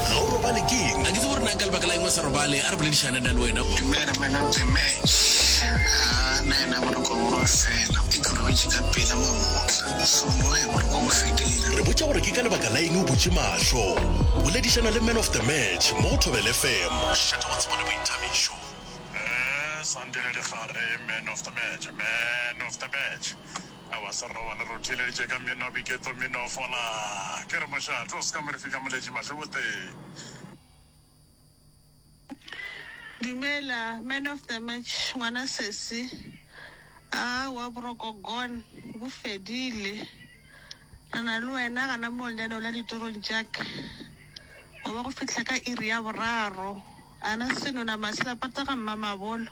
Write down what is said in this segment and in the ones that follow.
Ga o robale ke eng? Ga ke tsebe gore na ka lebaka la eng o sa robale. A re boledišane nna le wena. Dumela monna Mthemele. Haa, nna ena boroko bo ba fela. Ke khurumeditše ka pela mamotla. Hlomoge boroko bo fedile. Re botša gore ke ka lebaka la eng o butše mahlo. Boledišana le Man of the Match mo go Thobela FM. Šetša go tsebo le boithabišo. Ee, Sandile Dikgare, Man of the Match, Man of the Match. Aowa, se re robale re o theeleditše ka meno, Biketlo meno fola. Ke re mošate o se ka mo re fika moletši Mahleboteng. Dumela, man of the match, ngwana sesi. Aowa, boroko gon bo fedile. Re na le wena gana moo lenaneong la ditorong tša ka. Go be go fihla ka iri ya boraro. Ana senonama se lapata ga mmamabolo.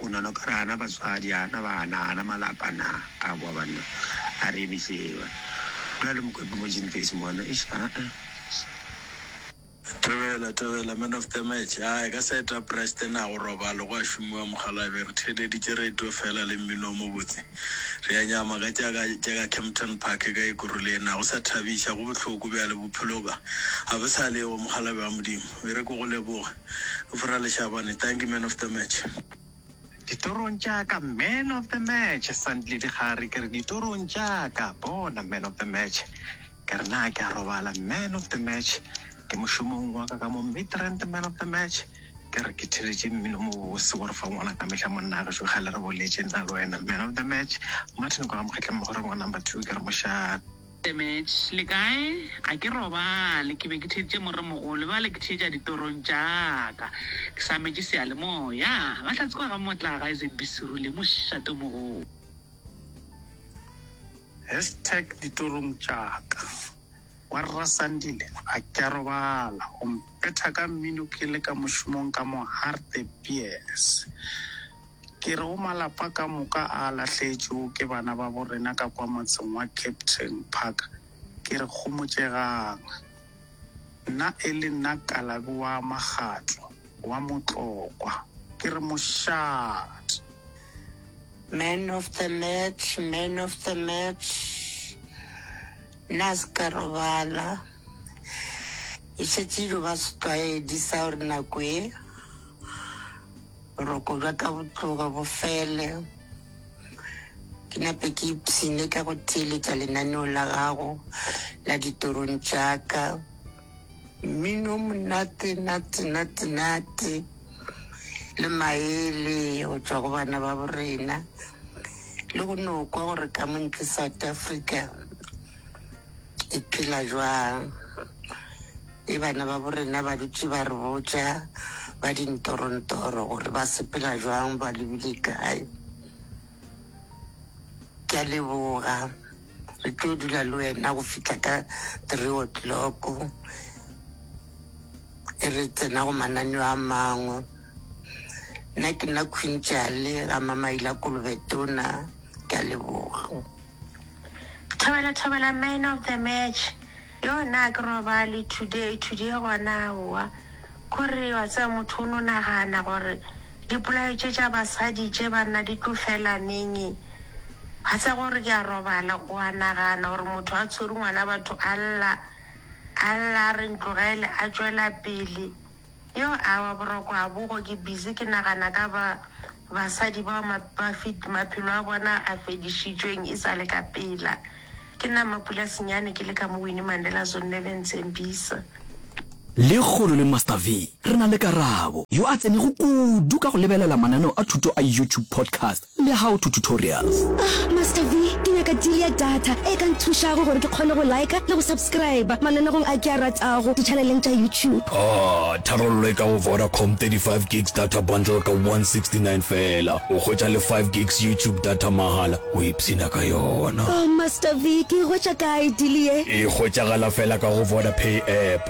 O nano ka re ana batswadi, ana bana, ana malapa na? A kwa banna, a re emiše ewa. Go na le mokwepe mo Jinfesi mona, eish, aa. Thobela, thobela, man of the match. Aa, e ka sa eta Preston, na go robalo, go a šomiwa mokgalabje. Re theeleditše radio feela le mmino o mobotse. Re a nyama ka tša ka, tša ka Kempton Park ka Ikuruli ye na. Go sa thabiša, go bohloko bjale, bophelo bja, ga bo sa le yo, mokgalabje wa Modimo. E re ke go leboge. Vra Leshabane, Dankie man of the match. Ditorong tša ka man of the match, Sandile Dikgare ke re ditorong tša ka bona man of the match ke re na ke a robala man of the match ke mošomong wa ka ka mo Midrand man of the match ke re ke theletše mmino mobose gore fa ngwana ka mehla monna gešo ga le re boletse nna le wena man of the match Martin kwa ga mokgetleng mogore ngwa number two ke re mošaa Demetš, Le kae? A ke robale? Ke be ke theeditše moremogolo, bjale ke theetša ditorong tša ka. Ke sametše seyalemoya. Bahlatse ba ga Motlaga e seng Bisiru le mošate o mogolo. Hashtag ditorong tša ka. Wa Rra Sandile, a ke a robala? O mphetha ka mmino ke le ka mošomong ka mo Hartebees. Ke re o malapa ka moka a a lahletšwego ke bana ba bo rena ka kwa motseng wa Captain Park, ke re homotšegang. Nna e le nna Kalabi wa Magatlo, wa Motlokwa, ke re mošate. Man of the match, man of the match, nna a se ka robala. E šetše e ilo ba setlwaedi sa gore nako e. Boroko bja ka bo tloga bo fele, ke nape ke ipshine ka go theeletša lenaneo la gago la ditorong tša ka. Mmino o monate nate nate nate le maele go tšwa go bana ba borena le go no kwa gore ka mo ntle South Africa e phela jwang. Ge bana babo rena ba dutše ba re botša ba dintorontoro gore ba sepela bjang, ba lebile kae, ke a leboga. Re tlo dula le wena go fihla ka three o'clock e re tsena go mananeo a mangwe. Nna ke nna Queen Jale ga Mamaila Kolobe Tona, ke a leboga. Thobela thobela man of the match. Yoo naa ke robale today today gona aowa kore wa tseba motho o no nagana gore dipolai tše tša basadi tše banna di tlo fela neng wa tseba gore ke a robala wa nagana gore motho a tshwere ngwana batho a lla a lla a re ntlogele a tšwela pele Yo awa boroko ha bogo ke busy ke nagana ka ba basadi bao ma ba feed maphelo a bona a fedišitšweng e sale ka pela ke nna Mapula Senyane ke le ka mo Winnie Mandela Zonne le ntsembisa. Lekgolo le Master V, re na le Karabo, yo a tsenego kudu ka go lebelela mananeo a thuto a YouTube podcast. Le how to tutorials. Ah Master V, ke nyaka deal ya data e ka nthušago gore ke kgone go liker le go subscriber mananegong a ke a ratago di-channeleng tša YouTube. Ah, tharollo e ka go Vodacom, 35 gigs data bundle ka 169 feela, o hwetša le 5 gigs YouTube data mahala, o ipshina ka yona. Oh Master V, ke e hwetša kae deal ye? E hwetšagala feela ka go Vodapay app.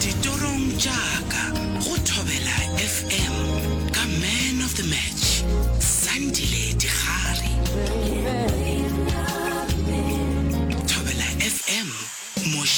Ditorong tša ka go Thobela FM ka Man of the Match, Sandile Digare. Thobela FM, moše.